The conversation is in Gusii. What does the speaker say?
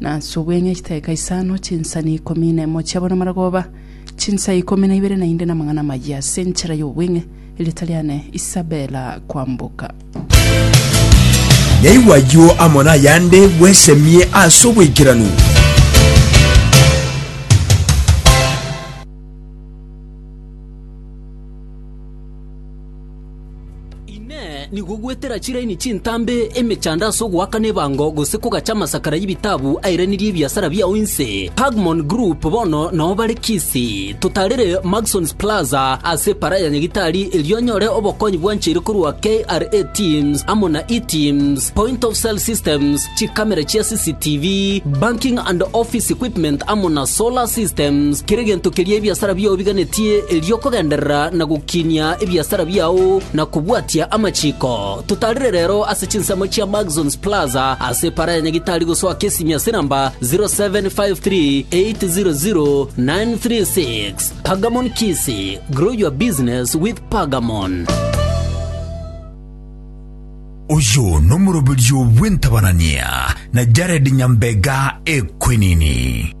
na ase obweng'e chitaika isano, chinsani ikomi na emo chiabo namarogoba, chinsa ikomi na ibere na inde namang'ana amayia ase enchera y'obweng'e, erieta riane Isabela kwamboka. Yaigwa ayio amo nayande bwesemie ase oboikeranu. Inee! Nigo gwetera chiraini chintambe emechando ase ogoakana ebango gose kogacha amasakara y'ebitabu airanirie ebiasara biao inse? Pagmon Group bono nao bare Kisii. Totarire Maxons Plaza ase Para ya Nyagitari erio onyore obokonyi bwancheire korwa KRA Teams amo na eTeams, Point of Sale Systems, chikamera chia CCTV, banking and office equipment amo na solar systems, kera egento keria ebiasara biao biganetie erio kogenderera na gokinia ebiasara biao na kobwatia amachiko. Totarire rero ase chinsemo chia Maxons Plaza ase epara ya Nyagitari gosoa Kisimia ase namba 0753800936. Pagamon Kisii, grow your business with Pagamon. Oyio nomoroberio bw'entabanania na Jared Nyambega Ekwenini.